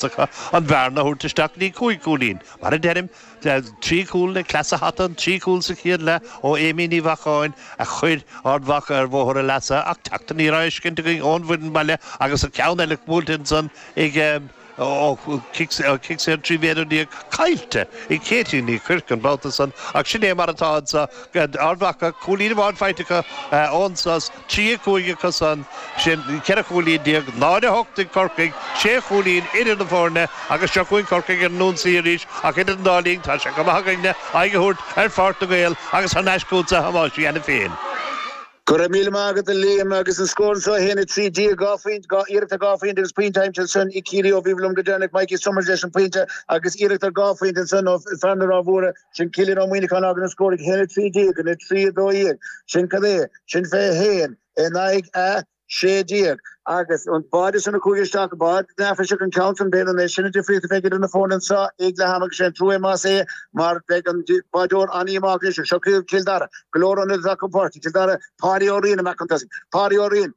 acu an bhearna a thabhairt isteach go dtí cúig chúilín. Mar a deirim, trí chúl le cleas a hata, an trí chúl sa chéad leath ó Amy Ní Mhacháin a chuir Ard Mhacha ar bhóthar a leasa ach teacht aniar á fheiscint againn ón bhfoireann baile agus an ceann eile buailte ansan ag cic saor 13 mhéadar caillte ag Katie Ní Chuirc an babhta san ach sin é mar atá anseo. Ard Mhacha, cúilín amháin faighte acu ón sos. Trí chúl a cúig acusan, sin 14 chúilín, náid a hocht ag Corcaigh, sé chúilín idir na foirne agus seo chugainn Corcaigh ar an ionsaí arís ach idir an dá linn tá sé chomh maith againne aghaidh a thabhairt ar Pháirc na nGael agus thar n-ais chugat a Thomáisín, a Sheáin féin. Go raibh míle maith agat, a Liam, agus an scór anso, 1, 13, dhá phointe, iarracht ar dhá phointe agus pointe aimsithe ansin ag Ciarraí ó bhíobhair liom go deireanach, Mikey Summers leis an bpointe agus iarracht ar dhá phointe ansin ó fear na Rátha Móire. Sin Cillian Ó Muíneacháin agus an scór 1 13 in 3 12. Sin cad é, sin 21 in aghaidh a 16. Agus an bád san a chuaigh isteach go bád neafaiseach an ceann sa bhéal anois. Sin an difríocht a bheidh idir na foirne anso ag leath ama agus sé an trua é más ea mar bheidh an báideoir an-íomhánach anois. Seo Cill Dara go leor ionaid atá acu, Páirc Chill Dara, Páidí Ó Riain amach chun tosaigh, Páidí Ó Riain,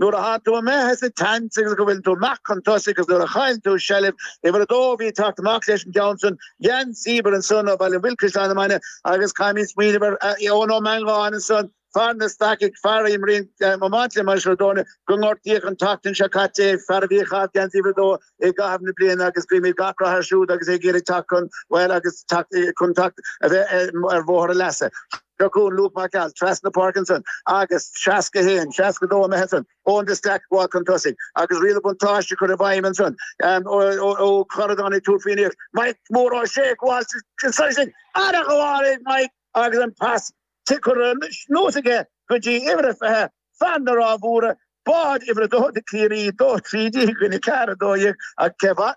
Nuair a théann tú amach as an tsaint agus go bhfuileann tú amach chun tosaigh agus nuair a chaill tú seilbh uimhir a dó bhí ag teacht amach leis an gceann san, geansaí uimhir ansan ó Bhaile an Mhuilinn Caisleán na Mainge agus caithfimid smaoineamh ar Eoin Ó Meangáin ansan, fear na Stacach, fear a imríonn i mbaint le Maceadónia gur gortaíodh an tseachtain seo caite é, fear a bhí ag caitheamh geansaí uimhir a dó i gcaitheamh na bliana agus guímid gach rath air siúd agus é ag iarraidh teacht chun, bhuel, agus teacht chun teacht a bheith ar bhóthar a leasa. Go dtí Luke Mac Call trasna Parkinson agus 61, 62 imithe ansan ón dtí, Staic ag gabháil chun tosaigh agus riail an bhuntáiste curtha i bhfeidhm ansan ó Chorradán ag Tiúr, fianaíocht. Mike Moore tá sé ag gabháil sin soir sin ar a ghabháil ag Mike agus an pas tugtha anuas aige go dtí uimhir a fiche Fear na Rátha Móire, Bád Uimhir 2 do Chiarraí, 2-13 i gcoinne 4-12 ag Cill Dara,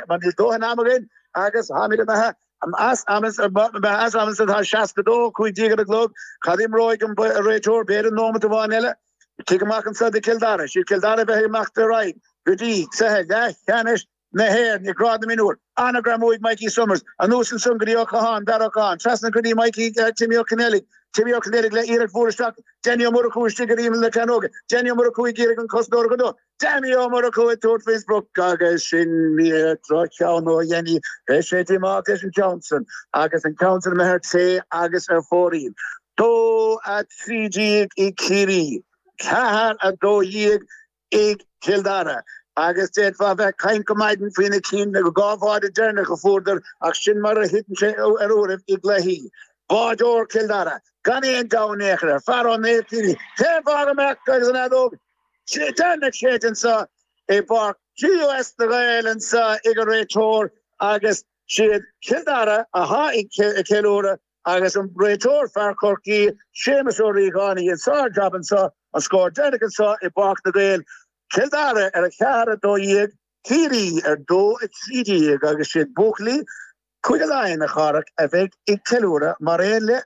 ach níl dóthain am againn agus táimid imithe as am is tá 62, 15 ar an gclog, cad imreoidh an réiteoir b'fhéidir an nóimeat amháin eile ag titim amach anso do Chill Dara, is iad Cill Dara a bheidh ag imeacht ar aghaidh go dtí cluiche leathcheannais na hÉireann i grád na mionúr. An-ghreim uaidh Mikey Summers, anuas ansan go dtí Ó Catháin, Darragh Ó Catháin, trasna go dtí Mikey, Timmy Ó Coinneallaigh, Timmy Ó Coinneallaigh le iarracht mhór isteach, Danny Ó Murchú istigh ar imeall na cearnóige, Danny Ó Murchú ag iarraidh an cosantóir a chur de, Danny Ó Murchú ag tabhairt faoin sprioc agus sin ní drochcheann ó Danny, beidh sé ag imeacht leis an ceann san agus an ceann san imithe ar clé agus ar fóraoil. 2-13 ag Ciarraí, 4-12 i gCill Dara agus d'fhéadfá a bheith ag caint go maidin faoi na cinn nó dhá bháide deireanach a fuaireadar ach sin mar a thiteann sé ar uairibh i gcluichí. Báideoir Chill Dara gan aon deabhadh in aon chor air phar Ó Néilltíní cén fáth go mbeadh agus an fheadóg deireanach séidte anseo i bPáirc TUS na nGael anseo ag an Réiteoir agus is iad Cill Dara atá ag ceiliúradh Agus an réiteoir, fear Chorcaí, Séamus Ó Riagáin a dhein sár-jab anseo, an scór deireanach anseo i bPáirc na nGael, Cill Dara ar 4-12, Ciarraí ar 2-13 agus is iad buachaillí Cúige Laighean, a Chárthaigh, a bheidh ag ceiliúradh mar aon le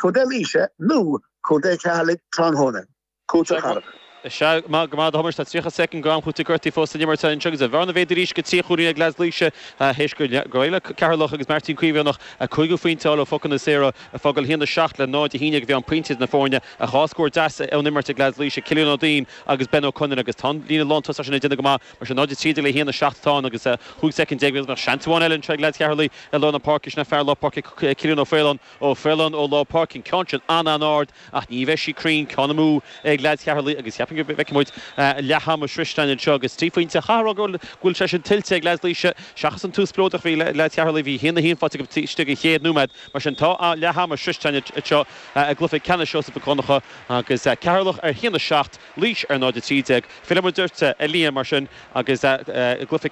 Contae Laoise nó Contae Cheatharlaigh tráthnóna. Cúiteamh thar. Is ea, go raibh maith agat, a Thomáis, tá 30 soicind d'am cúitimh gortaithe fós san imirt anseo agus an bhearna méadaithe arís go trí chúilín ag leaids Laoise théis gur ghéill Ceatharlach agus Martin Caomhánach a chúigiú pointe a fháil ó phocanna saora ag fágáil 1-7 le 0-11 a bhí ann pointe idir na foirne ach dhá scór deas ón imirt ag leaids Laoise, Cillian Ó Duinn agus Ben Ó Conaire agus tá an líne lántosaigh sin ag déanamh go maith mar sin 0-13 le 1-7 atá ann agus 15 soicind seans amháin eile anseo ag leaids Cheatharlaigh i lár na páirce sin ag fear lár páirce Cillian Ó Faoláin Ó Faoláin ó lár páirce an ceann sin an-an-ard Ach ní bheidh sí cruinn ceann amú ag leaids Cheatharlaigh agus cheapfainn go bhfeicfidh muid leath ama sroichte againn anseo agus trí phointe, chaithfeá a rá go bhfuil sé sin tuillte ag leaids Laoise. Seachas an tús spleodrach a bhí ag leaids Cheatharlaigh bhí a haon a haon faighte acu taobh istigh den chéad nóiméad. Mar sin tá leath ama sroichte againn anseo i gcluiche ceannais Sheosaimh Mhic Dhonncha agus Ceatharlach ar haon a seacht, Laois ar 0 a trí déag. Fillfidh muid ort a Liam mar sin agus cluiche